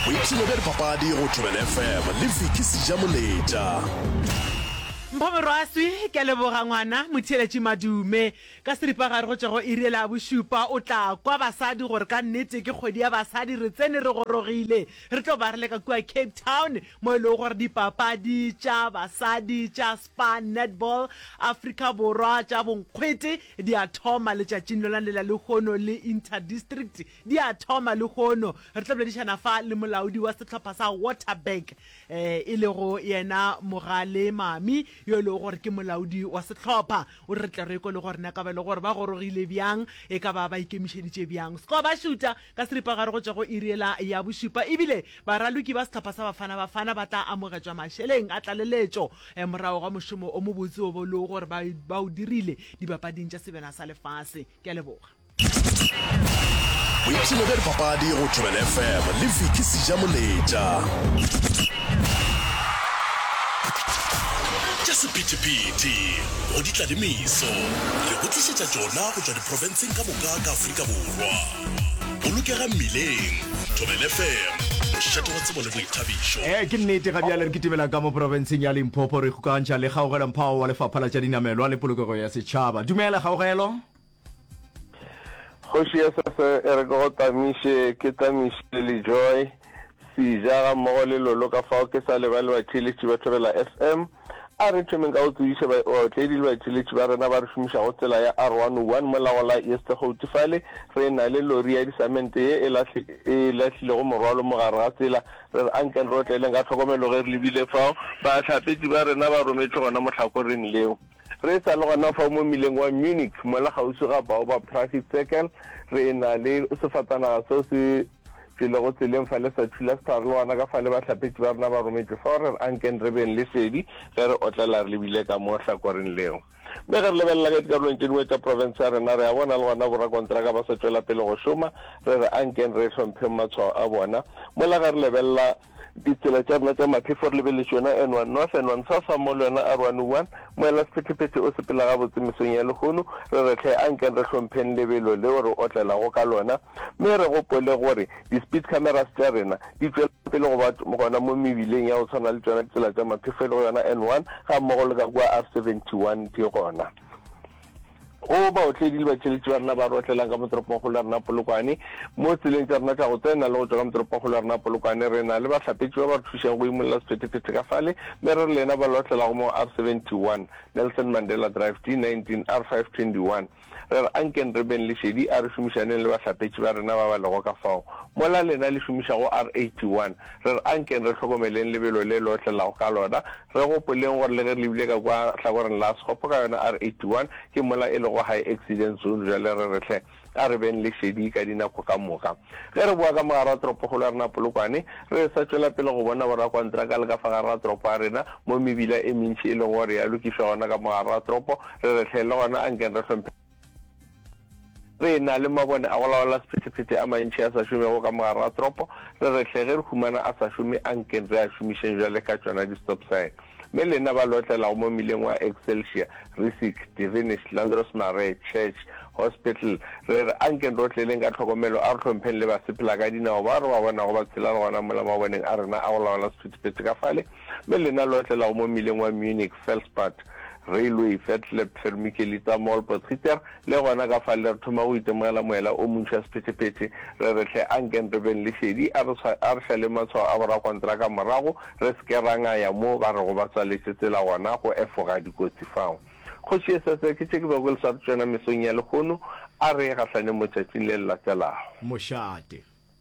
boipshino bja dipapadi go Durban FM le Vicky Sejamoleta. Mpho Morwaswi, ke a leboga ngwana motheeletši Madume. Ka seripagare go tšwa go iri e labošupa o tla kwa basadi gore ka nnete ke kgwedi ya basadi re tsene re gorogile. Re tlo ba re leka kua Cape Town mo e lego gore dipapadi tša basadi tša Spar Netball Afrika Borwa tša bonkgwete Di a thoma letšatšing lona lela lehono le Interdistrict di a thoma lehono. Re tla boledišana fa le molaodi wa sehlopha sa Waterberg e lego yena Mogale Mami yo e lego gore ke molaodi wa sehlopha. O re re tle re ekwe le gore na e ka ba e le gore ba gorogile bjang, e ka ba ba ikemišeditše bjang. Skobašuta Ka seripagare go tšwa go iri yela ya bošupa, e bile baraloki ba sehlopha sa Bafana Bafana ba tla amogetšwa mašeleng a tlaleletšo morago ga mošomo o mobotse wo ba lego gore ba o dirile dipapading tša sebjana sa lefase. Ke a leboga. Boipshino bja dipapadi go Thobela FM le Vicky Sejamoletša. Tša sephethephethe go ditladimiso re go tlišetša tšona go tšwa diprofenseng ka moka ka Afrika Borwa. Bolokega mmileng. Thobel FM, mošate wa tsebo le boithabišo. Ee, ke nnete, ga bjale re kitibela ka mo porofenseng ya Limpopo re ikgokantšha le Kgaugelo Mphao wa Lefapha la tša Dinamelwa le Polokego ya Setšhaba. Dumela, Kgaugelo. Kgoši ya Sese e re ke go tlamiše, ke tlamiše Lejoy. Sija gammogo le Lolo ka fao ke sa lebale batšweletši ba Thobela FM. A re thomeng ka go tsebiša baotledi le batšweletši ba rena ba re šomišago tsela ya R101 mo la go la Eastergouti fale re na le lori ya disamente ye e lahlilego morwalo mo gare ga tsela. Re re ankeng re otleeleng ka tlhokomelo ge re lebile fao. Bahlapetši ba rena ba rometšwe gona mohlakoreng leo. Re sa le gona fao mo mmileng wa Munich, mola kgauswi ga Baobab Traffic Circle, re e-na le sefatanaga seo se tšwelego tseleng fa le sa thula sepharologwana ka fale bahlapetši ba rena ba rometšwe fao re re a nkeng re beng le šedi ge re otlela re lebile ka mo hlakoreng leo. Mme ge re lebelela ka dikarolong tše dingwe tša profense ya rena, re a bona le gona borakontraka ba sa tšwela pele go šoma, re re a nkeng re hlompheng matshwao a bona, mola ge re lebelela ditsela tša rena tša maphefo re lebeletše yona and one north and one south ga mmogo le yona a rwane one moela sephetephete o sepela gabotse mesong ya lehono re re tlhe a nkeng re hlompheng lebelo leo re otlelago ka lona mme re gopole gore di-speed cameras tša rena di tšwela pele go ba gona mo mebileng ya go tshwana le tsona ditsela tša maphefo e le go yona n one ga mmogo le ka kua r seventy one di gona go baotledi le batšweletši ba rena ba re otlelang ka motoropongkgolo ya rena polokwane mo tseleng tša rena tša go tsena le go tšwa ka motoropongkgolo ya rena polokwane re na le bahlapetši ba ba re thušago go imolola sephethephethe ka fale mme re re le yena ba le otlelago mo r 71 nelson mandela drive d 19 r 521 re re ankeng re beng lešedi a re šomišaneng le bahlapetši ba rena ba ba lego ka fao mola lena le šomišago r 81 re re ankeng re hlokomeleng lebelo le le otlelago ka lona Re gopoleng gore le ge re lebile ka kwa hlakoreng la Sekgopo ka yona R81, ke mola e lego high accident zone, bjale re re hle a re beng le šedi ka dinako ka moka. Ge re boa ka mogare wa toropokgolo ya rena Polokwane, re sa tšwela pele go bona borakontraka le ka fa gare ga toropo ya rena, mo mebila e mentši e lego gore ya lokišwa gona ka mogare ga toropo, re re hle le gona a nkeng re hlomphe. Re na le mabone a go laola sephethephethe a mantši a sa šomego ka mogare ga toropo. Re re hle ge re humana a sa šome, a nkeng re a šomišeng bjale ka tšona di-stop sign. Mme lena ba le otlelago mo mmileng wa Excelsior, Risic, Divinish, Landros Mare, Church, Hospital, re re a nkeng re otleleng ka tlhokomelo, a re hlompheng le basephelakadinao bao re ba bonago ba tshela le gona mola maboneng a rena a go laola sephethephethe ka fale. me lena lo atlelago mo mmileng wa Munich, Felspert, Railway, Vetleb, Fermikelitsa, Mall, Potgieter, le gona ka fale re thoma go itemogela moela o montši wa sephetephete, re re hle anken re beng le šedi, a re, a re šaleng matshwao a borakontraka morago, re se ke ra ngaya mo ba rego ba tswaletše tsela gona go efoga dikotsi fao. Kgoši ye sese, ke tše ke bego ke le swaretše tšona mesong ya lehono, a re ye gahlaneng motšatšing le le latelago. Mošate.